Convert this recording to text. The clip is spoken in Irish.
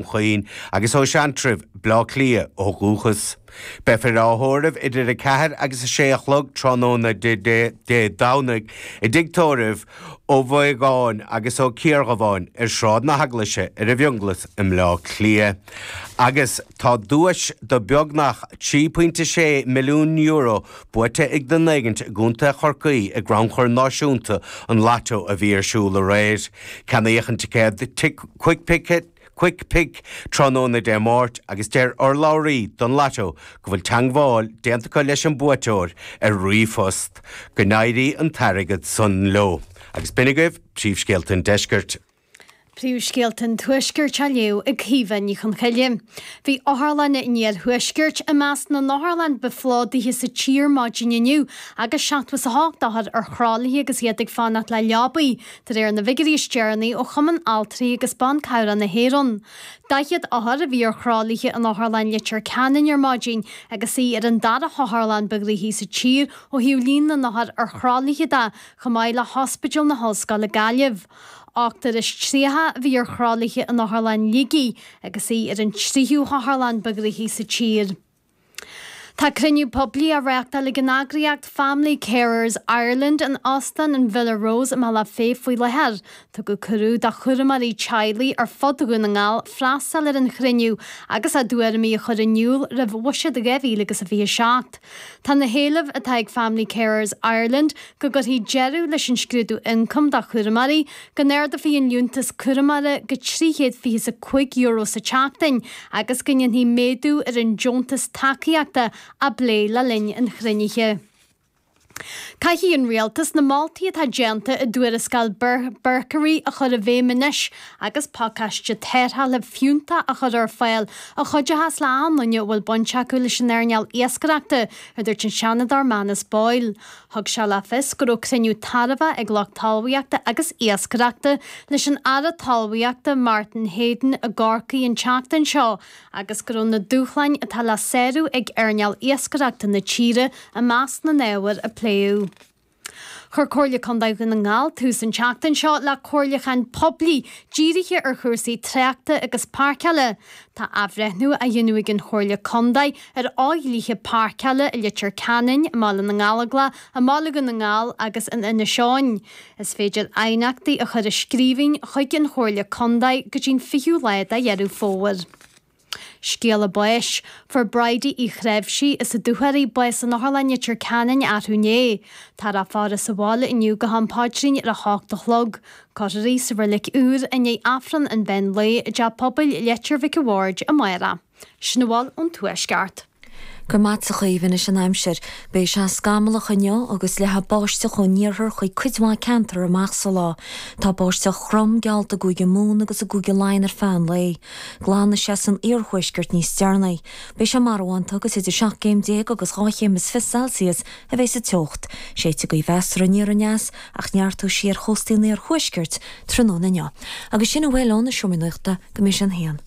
Chaoin agus ó Sheantrabh, Bleá Cliath, ó dhúchas. Beifear á thórramh idir 4 agus 6 a chlog tráthnóna Dé Domhnaigh i dTigh Tórraimh, Ó Mhaogáin agus Ó Ciardhubháin, ar Sráid na hEaglaise ar an bhFionghlas i mBleá Cliath agus tá duais do beagnach 3.6 milliún euro Buaite ag duine éigint i gContae Chorcaí i gcrannchur náisiúnta an Lotto a bhí ar siúl aréir. Ceannaíodh an ticéad Quick Pick tráthnóna Dé Máirt agus deir urlabhraí don Lotto go bhfuil teangmháil déanta acu leis an buaiteoir ar ríomhphost. Go n-éirí an t-airgead san leo. Agus b'in agaibh príomhscéalta an Deiscirt. Príomhscéalta an Tuaiscirt á léamh ag Caoimhe Ní Chonchoille. Bhí otharlanna an Iarthuaiscirt i measc na n-otharlann ba phlódaithe sa tír maidin inniu agus 78 othar ar thralaithe agus iad ag fanacht le leabaidh, de réir na bhfigiúirí is deireanaí ó Chumann Altraí agus Ban Cabhrach na hÉireann. 40 othar a bhí ar thralaithe in Otharlann Leitir Ceanainn ar maidin agus í ar an dara hotharlann ba ghnoithí sa tír ó thaobh líon na n-othar ar thralaithe de, chomh maith le hOspidéal na hOllscoile Gaillimh. Ochtar is tríocha a bhí ar thralaithe in Otharlann Shligigh agus í ar an tríú hotharlann ba ghnoithí sa tír. Tá cruinniú poiblí á reáchtáil ag an eagraíocht Family Carers Ireland in Óstán an Villa Rose i mBealach Féich faoi láthair. Tugadh cuireadh do chúramóirí teaghlaigh ar fud Dhún na nGall freastal ar an chruinniú agus a dtuairimí a chur in iúl roimh Bhuiséad 2027. Tá na héilimh atá ag Family Carers Ireland, go gcuirfí deireadh leis an scrúdú ioncaim do chúramóirí, go n-ardófaí an liúntas cúramóra go 325 euro sa tseachtain agus go ndéanfaí méadú ar an deontas tacaíochta, á bplé le linn an chruinnithe. Caithfidh an Rialtas na moltaí atá déanta i dTuarascáil Berkery a chur i bhfeidhm anois agus pacáiste tarrthála fiúntach a chur ar fáil a chuideochas le daoine a bhfuil baint acu leis an earnáil iascaireachta, a dúirt an Seanadóir Manus Boyle. Thug sé le fios go raibh cruinniú tairbheach ag lucht talmhaíochta agus iascaireachta leis an Aire Talmhaíochta Martin Heydon i gCorcaigh an tseachtain seo agus go raibh na dúshláin atá le sárú ag earnáil iascaireachta na tíre i measc na n-ábhar a pléadh. Chuir Comhairle Contae Dhún na nGall tús an tseachtain seo le comhairliúchán poiblí dírithe ar chúrsaí tráchta agus páirceála. Tá athbhreithniú á dhéanamh ag an Chomhairle Contae ar fhodhlíthe páirceála i Leitir Ceanainn, i mBaile na nGallóglach, i mBaile Dhún na nGall agus in Inis Eoghain. Is féidir aighneachtaí a chur i scríbhinn chuig an Chomhairle Contae go dtí an 20ú lá de Dheireadh Fómhair. Scéala Báis, Fuair Bridie Uí Threimhsí as na Dúchoraidh bás in Otharlann Leitir Ceanainn arú inné. Tá a faire sa bhaile inniu go ham paidrín ar a h-ocht a chlog. Cuirfear í sa reilig úr i ndiaidh Aifreann an mheán lae i dTeach Pobail Leitir Mhic an Bhaird amárach. Sin a bhfuil ón Tuaisceart. Go raibh maith agat a Chaoimhe, anois an aimsir. Beidh sé scamallach inniu agus leathfaidh báisteach ón iarthar chuig cuid mhaith ceantar amach sa lá. Tá báisteach throm geallta i gCúige Mumhan agus i gCúige Laighean ar feadh an lae. Glanfaidh sé san iarthuaisceart níos deireanaí. Beidh sé marbhánta agus idir seacht gcéim déag agus dhá chéim is fiche Celsius a bheidh sa teocht. Séidfidh gaoth mheasartha aniar aneas ach neartóidh sí ar chóstaí an iarthuaiscirt tráthnóna inniu. Agus sin a bhfuil ó na Seomraí Nuachta go Iris an hAon.